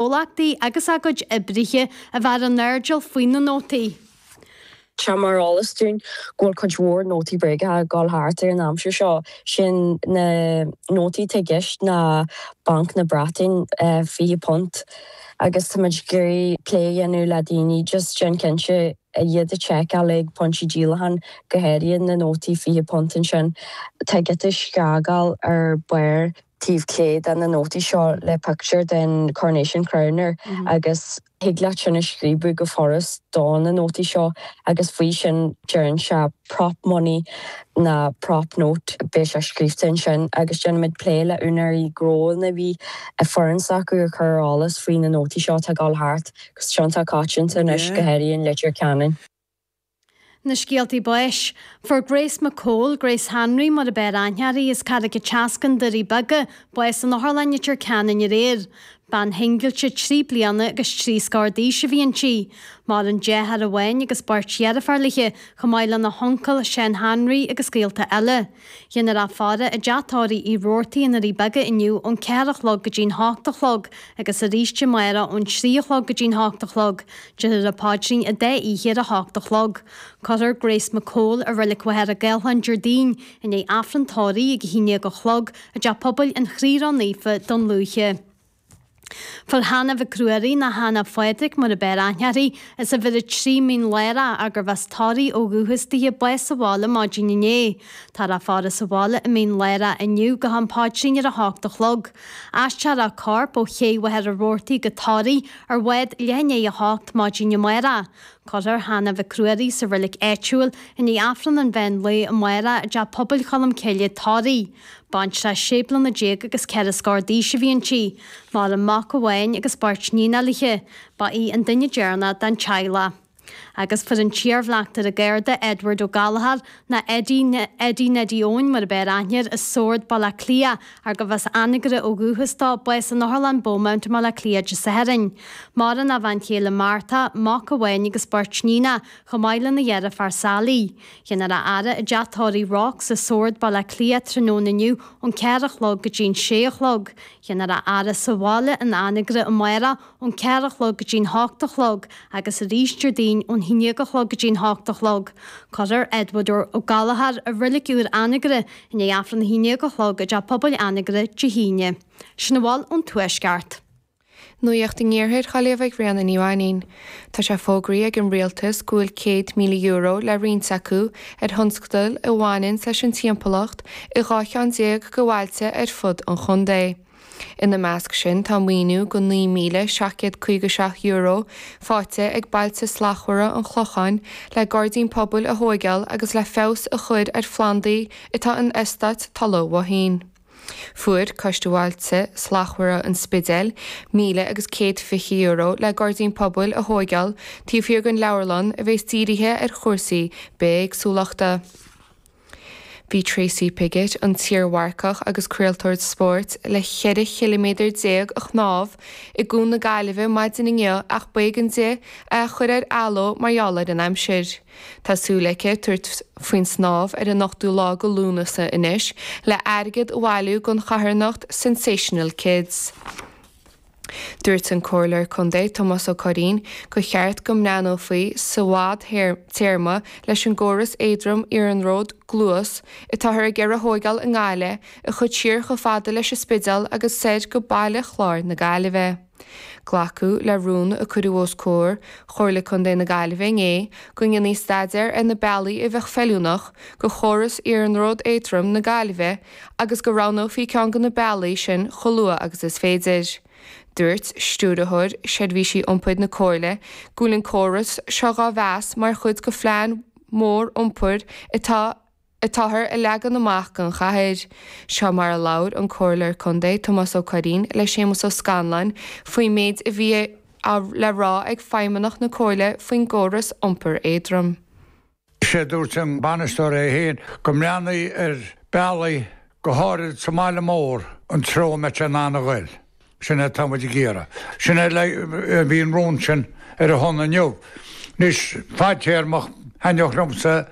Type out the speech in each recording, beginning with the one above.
gcomhlachtaí agus a gcuid oibrithe a bheith ar a n-airdeall faoi na nótaí. Tá mar eolas dúinn go bhfuil cuid mhór nótaí bréagacha ag dul thart ar an aimsir seo. Sin na nótaí atá i gceist ná Banc na Breataine, fiche punt, agus táimid ag iarraidh plé a dhéanamh le daoine just déan cinnte iad a sheiceáil ag pointí díolacháin go háirithe na nótaí fiche punt ansin tá giota scragall ar barr taobh clé de na nótaí seo le pictiúr den Coronation Crown air agus thig leat sin a scríobadh go furast de na nótaí seo agus faoi sin deireann sé Prop Money ná Prop Note beidh sé scríobhte ansin agus déanaimid plé le úinéirí gnó lena bhfoireann s'acu a chur ar an eolas faoi na nótaí seo atá ag dul thart agus atá iontach coitianta anois go háirithe i Leitir Ceanainn. Na scéaltaí báis. Fuair Grace McCole, Grace Hanraí mar ab fhearr aithne uirthi, as Carraig a' tSeascainn, Doirí Beaga, bás in Otharlann Leitir Ceanainn aréir. Bean shingilte trí bliana agus trí scór d'aois a bhí inti. Maireann deartháir amháin agus beirt dheirfiúr léithi, chomh maith lena huncail Seán Hanraí agus gaolta eile. Déanfar a faire i dteach tórraimh Uí Robhartaigh i nDoirí Beaga inniu ón ceathair a chlog go dtí'n hocht a chlog agus arís amárach ón trí a chlog go dtí'n hocht a chlog. Déarfar an Paidrín an dá oíche ar a hocht a chlog. Cuirfear Grace McCole i Reilig Mhachaire Gathlán Déardaoin i ndiaidh Aifreann Tórraimh ag a haon déag a chlog i dTeach Pobail an Chroí Ró-Naofa, Dún Lúiche. Fuair Hannah Mhic Ruairí nó Hannah Phádraig mar ab fhearr aithne uirthi, as uimhir a trí Mín Lárach, arbh as Toraigh ó dhúchas di bás sa bhaile maidin inné. Táthar á faire sa bhaile i Mín Lárach inniu go ham paidrín ar a hocht a chlog. Aistreofar a corp ó Ché Mhachaire Rabhartaigh go Toraigh ar bhád leath i ndiaidh a hocht maidin amárach. Cuirfear Hannah Mhic Ruairí sa reilig áitiúil i ndiaidh Aifreann an mheán lae amárach i dTeach Pobail Cholm Cille, Toraigh. Baintreach 16 bliana agus ceithre scór d'aois a bhí inti. Maireann mac amháin agus beirt níon léithi, ba í an duine deireanach den teaghlach. Agus fuair an t-iar-bhleachtaire Garda Edward Ó Gallchóir, nó Eddie Neddie Eoin mar ab fhearr aithne air, as Sord, Baile Átha Cliath, arbh as Anagaire ó dhúchas dó, bás in Otharlann Beaumont i mBaile Átha Cliath Dé Sathairn. Maireann a bhean chéile Martha, mac amháin agus beirt níon, chomh maith lena dheirfiúr Sally. Déanfar a fhaire i dteach tórraimh Rocks i Sord, Baile Átha Cliath tráthnóna inniu ón ceathair a chlog go dtí'n sé a chlog. Déanfar a fhaire sa bhaile in Anagaire amárach ón ceathair a chlog go dtí'n hocht a chlog agus arís Déardaoin ón haon déag a chlog go dtí'n hocht a chlog. Cuirfear Edward Ó Gallchóir i reilig úr Anagaire i ndiaidh aifreann a haon déag a chlog i dTeach Pobail Anagaire Dé hAoine. Sin a bhfuil ón Tuaisceart. Nuaíocht in Iarthar Ghaillimh ag Ríona Ní Mhainín. Tá sé fógraithe ag an Rialtas go bhfuil €100,000 le roinnt acu ar thionscadail a bhaineann leis an timpeallacht i dhá cheann déag de bhailte ar fud an chontae. Ina measc sin tá maoiniú go €9,757 faighte ag Bailte Slachtmhara an Chlocháin le gairdín pobail a thóigeáil agus le feabhas a chuir ar phlandaí atá in Eastát Tulaigh Mhóithín. Fuair Coiste Bhailte Slachtmhara an Spidéil míle agus céad fiche euro le gairdín pobail a thóigeáil taobh thiar den leabharlann a bhéas dírithe ar chúrsaí bithéagsúlachta. Bhí Tracy Piggott, an t-iarmharcach agus craoltóir spóirt, le cheithre chiliméadar déag a shnámh i gCuan na Gaillimhe maidin inniu ach b'éigean di é a chur ar athló mar gheall ar an aimsir. Tá súil aici tabhairt faoin snámh ar an 8ú lá go Lúnasa anois le airgead a bhailiú don charthanacht Sensational Kids. Dúirt an Comhairleoir Contae Tomás Ó Curraoin gur cheart go mbreathnófaí sa bhfad téarma leis an gcóras éadrom iarnród Gluas atáthar ag iarraidh a thóigeáil i nGaillimh a chur siar chomh fada leis an Spideál agus soir go Baile Chláir na Gaillimhe. Glacadh le rún a cuireadh os comhair Chomhairle Contae na Gaillimhe inné go ndéanfaí staidéar ar na bealaí a bheadh feiliúnach go chóras Iarnród Éadrom na Gaillimhe agus go roghnófaí ceann de na bealaí sin chomh luath agus is féidir. Dúirt Stiúrthóir Seirbhísí Iompair na Comhairle go bhfuil an córas seo dhá mheas mar chuid de phlean mór iompair atá atáthar a leagan amach don chathair. Seo mar a labhair an Comhairleoir Contae Tomás Ó Curraoin le Séamus Ó Scanláin faoin méid a bhí le rá ag Feidhmeannach na Comhairle faoin gcóras iompair éadrom. Is é a dúirt an bainisteoir é féin go mbreathnódh ar bealaí, go háirid sa mbaile mór, an treo a mbeadh sé in ann a ghoil. Sin é atá muid ag iarraidh. Sin é a bhí an rún sin ar a shon inniu. Anois fadtéarmach thaitneodh liomsa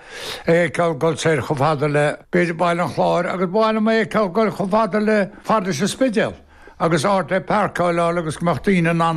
é a fheiceáil ag dul soir chomh fada le b'fhéidir Baile an Chláir agus ba mhaith liom é a fheiceáil ag dul chomh fada le paróiste an Spidéil agus áit le páirceáil agus go mbeadh daoine in ann